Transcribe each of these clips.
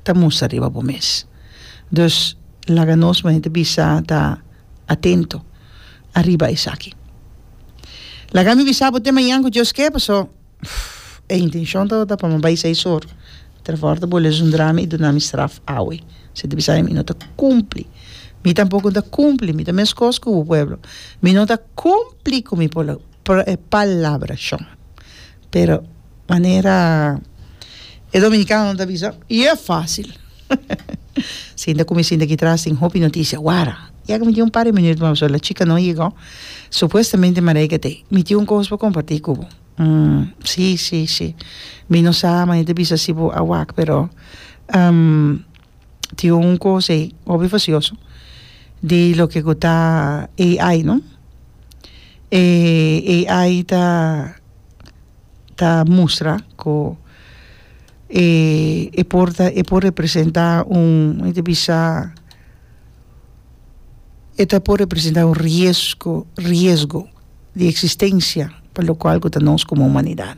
ta mustra riba bo mes. Dus laga nos manera bisa ta atento ariba esaki. Laga mi bisa bo te mañan ku Dios ke paso e intencion tabata pa mi bai sai sor tra for ta bo lezondra mi i duna mi straf awe. Esei ta bisa mi no ta kumpli. Mi tampoko no ta kumpli, mi ta meskos ku bo pueblo. Mi no ta kumpli ku mi palabra shon. Pero manera e dominicano ta bisa y e facil sinta cu mi sinta aki tras tin hopi noticia wara ya cu mi tin un par de minuto mas pasobra la chica no a yega supuestamente Mareike ta ahí mi tin un cos pa comparti cu bo si si si mi no sa manera ta bisa si bo a wak pero tin un cos ey hopi facioso di loke cu ta AI no e AI ta ta mustra cu e e por ta e por representa un mi ta bisa e ta por representa un riesco riesgo di existencia pa locual cu ta nos como humanidad.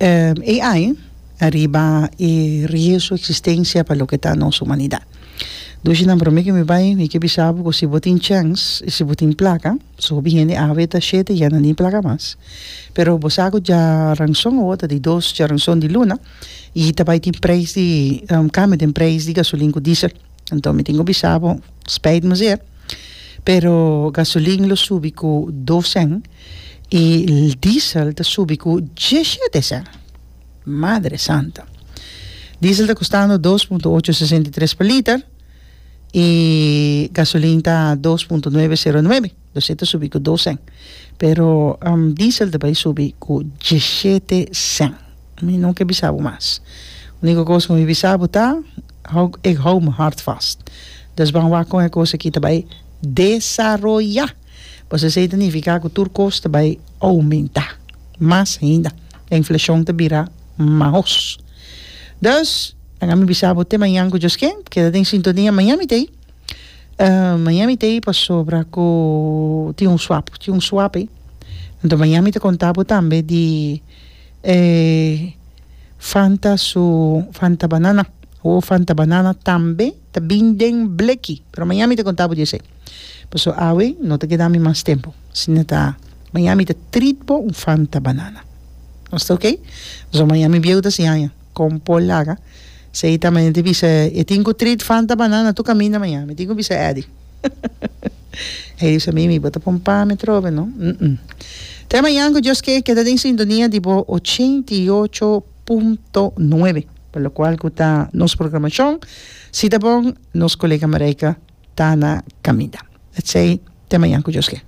AI ariba e riesgo existencia pa loke ta nos humanidad dushinan prome ke mi bai mi ke bisa bo ku si bo tin chens y si bo tin placa su hopi hende a weta shete ya nan tin placa mas pero bo sa ku dja ranson awo ta di dos dja ranson di luna y ta bai tin prijs di un cambio den prijs di gasolin ku diesel enton mi tin ku bisa bo spijt mi ser pero gasolin lo subi ku dos cen Y diesel ta subi cu diecisiete cent. Madre santa. Diesel ta costando dos punto ocho sesenta y tres per liter y gasolin ta dos punto nueve cero nuebe. Dus e ta subi cu dos cent. Pero diesel ta bay subi cu diecisiete cent. Mi no ke bisa bo mas. Unico cos cu mi bisa bo ta ik hou mi hart vast. Dus ban wak con e cos aki ta bay desaroya. Pues esei ta nifiká ku tur kos ta bai oumentá mas henda, e inflashon ta bira maos. Dus, a mi bisa bo te mañan ku djos ke, keda den sintonia mañan mi ta ei, mañan mi ta ei pasobra ku tin un swap, tin un swap ei. Anto mañan mi ta konta bo tambe di e Fanta su Fanta banana, Fanta banana tambe. ta bin den bleki, pero maña mi ta konta bo di esei. Paso awe no ta keda mi mas tempo, sino ta maña mi ta treat bo un fanta banana. Nos ta oke? Paso maña mi bieu ta siña aña kon Paul laga, sei ta maña ta bisa e tin ku treat fanta banana tur kaminda maña, mi tin ku bisa Eddy. Eddy ta bisa mimi, bo ta pon pan me trobe no. Te mañan ku Dios ke keda den sintonia di bo ochenta i ocho. punto nuebe, pa lokual ku ta nos programashon, si ta bon nos kolega Marijke ta na kaminda. Letsey te mañan ku Dios ke.